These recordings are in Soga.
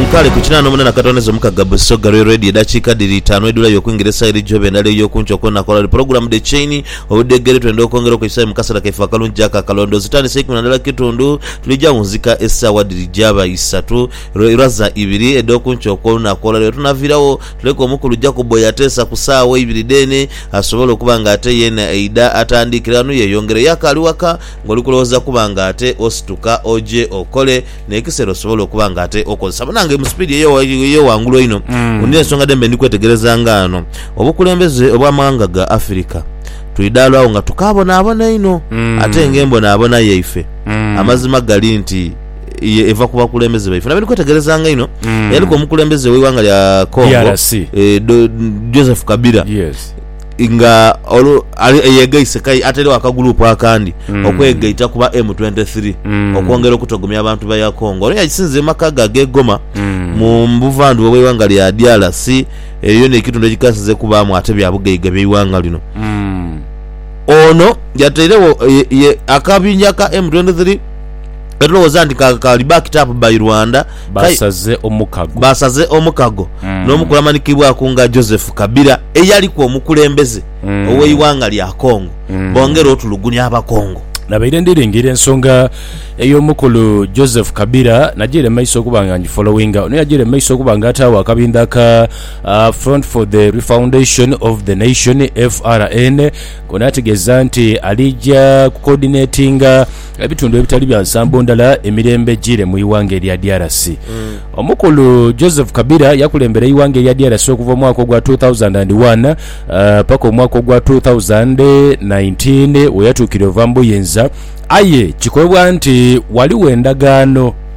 Nkali ku kinaana omunana katondeza omukaga Busoga lwe Radio edakiika dhiri itaanu edhula yo okwingira esaa eri joba endala eyo kunkyo okwo nakola lwe pulogulamu The Chain Obudheegere twenda okwongera okweisaayo mu kaseera kaife akalungi ako akalondoozi tandise ikumi na ndala kitundu tulija wunzika esaawa dhiri jaba isatu lwe irwa za ibiri edho kunkyo okwo nakola lwe tunaviirawo tuleke omukulu Jacob oyo ateesa ku saawa ibiri dheene asobole okuba nga ate yeena eidha atandiikire ghano yeyongere yo akaali waka Ngoli kulowooza kuba nga ate osituka oje okole nekisera osobole okuba nga ate okozesa banange mu speed eyo wangulu einho nina ensonga dhembe ndi kwetegereza nga ano obukulembeze obwa mawanga ga Africa twidhala agho nga tukabonabona einho ate nga embonabona yaife amazima gali nti ye eva ku bakulembeze baife nabye ndi kwetegereza nga einho eyaliku omukulembeze we iwanga lya Congo DRC. Joseph Kabila Yes. nga olu, ali eyegaise kai atairewo akaguruupu akandi mm. okwegaita kuba M23 mm. okwongera okutogomya abantu ba ya Congo. Ono yagisinzire mu maka ge ag'e Goma mm. mu buvandhuba bw'eighanga lya DRC. Eyo yona ekitundu ekikasinze kubaamu ate bya bugaiga by'eighanga lino mm. Ono yatairewo akabinja ka M23 etulowooza nti kali backed up by Rwanda Baasaze omukago. Baasaze omukago n'omukulamanhikibwaku nga Joseph Kabila eyaliku omukulembeze ow'eighanga lya Congo bongere otulugunya Abakongo. Nabaire ndi lingira ensonga ey'omukulu Joseph Kabila najaire mu maiso okuba nga ngifolowinga. Ono yajaire mu maiso okuba nga ataagho akabindha aka Front for the Refoundation of the Nation, FRN, k'onaategeeza nti alija kukoodinetinga, Ebitundu ebitali bya nsambo ndala emirembe ejiire mu ighanga erya DRC. Omukulu Joseph Kabila yakulembera eighanga erya DRC okuva omwaka ogwa two thousand and one paka omwaka ogwa two thousand nineteen weyatuukira ova mu buyinza aye kikolebwa nti ghaligho endagaano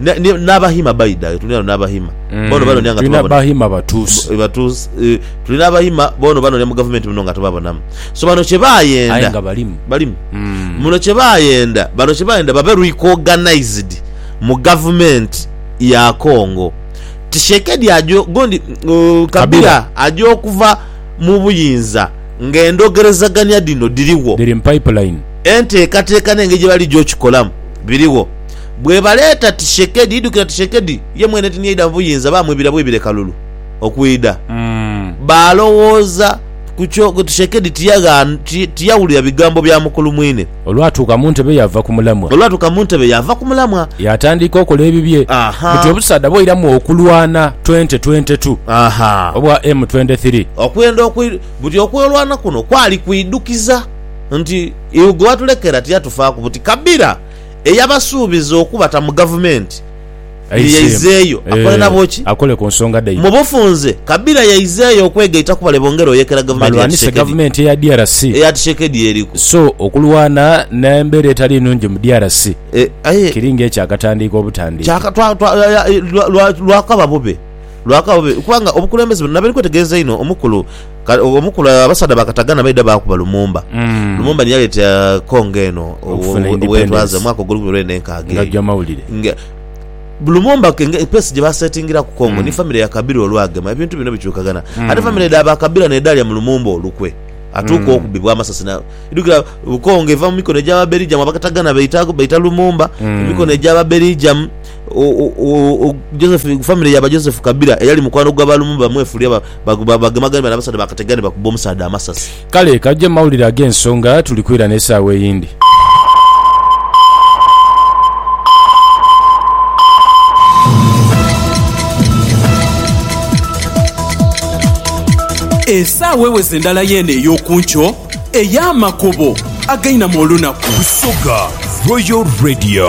N'Abahima baidha yo, tulina n'Abahima boono banonia nga tubabona. Abahima batuusi. Batuusi, tulina Abahima boono banonia mu gavumenti muno nga tubabonamu. So bano kye baayenda. Aye nga balimu. Balimu. Muno kye baayenda, bano kye baayenda babe re-cognized mu gavumenti ya Congo. Tshisekedi aja, gundi Kabila aja okuva mu buyinza ng'endogerezagania dhino dhirigho. Dhiri mu pipeline. Enteekateeka n'engeri gye baligya okikolamu birigho. Bwebaleeta Tishekedi, idhukira Tishekedi, ye mwene tinyaidha mu buyinza, baamwibira bwibire kalulu okwidha. Baalowooza ku kyo, Tishekedi tiyawulira bigambo bya mukulu mwine. Olwatuuka mu ntebe yaava ku mulamwa. Olwatuuka mu ntebe yaava ku mulamwa. Yaatandiika okola ebibye. Buti obusaadha bwairamu okulwana twente twente tu obwa M twende thiri. Okwenda buti okwolwana kuno kwali kuidhukiza nti iugwe watulekera tiyatufaaku buti kabira. Eyabasuubiza okubata mu gavumenti ye yaizeeyo akole nabo ki? Mu bufunze, Kabila yaizeeyo okwegaita ku bale bongera oyekera gavumenti ya Tshisekedi eya Tshisekedi eriku. So okulwana n'embeera etali nnungi mu DRC kiri ng'ekyakatandiika obutandiika. Lwakaba bube, lwakaba bube kubanga obukulembeze buno nabali kwetegereza inho, Omukulu. Kale o- omu ku la- abasaadha ba Katagana baidha baakuba Lumumba. Mm. Lumumba ni yaleeta Congo eno o- Okufuna o- independence. wetwaze mu mwaka ogw'olukumi lwenda enkaaga Nga eyo. gya mawulire. Nga- Lumumba ke- nge- pesi gye basetingiraku Congo ni famire ya Kabira olwagema ebintu bino bikyukagana. Ate famire dha ba Kabira n'edhaalya mu Lumumba olukwe atuuka okubibwa amasasi na idhukira uh, Congo eva mu mikono egy'Ababelijamu Abakatagana baita baita Lumumba mu mikono egy'Ababelijamu o- o- o- o- Joseph famire ya ba Joseph Kabira eyali mukwano gwa ba Lumumba bamwefuulira ba Bagemagane bale abasaadha bakategane bakubbe omusaadha amasasi. Kale kajja mu mawulire ag'ensonga tuli kwira n'esaawa eyindi. Esaawa eweze ndala y'eno ey'oku nkyo ey'amakubo againamu olunaku. Busoga Royal Radio.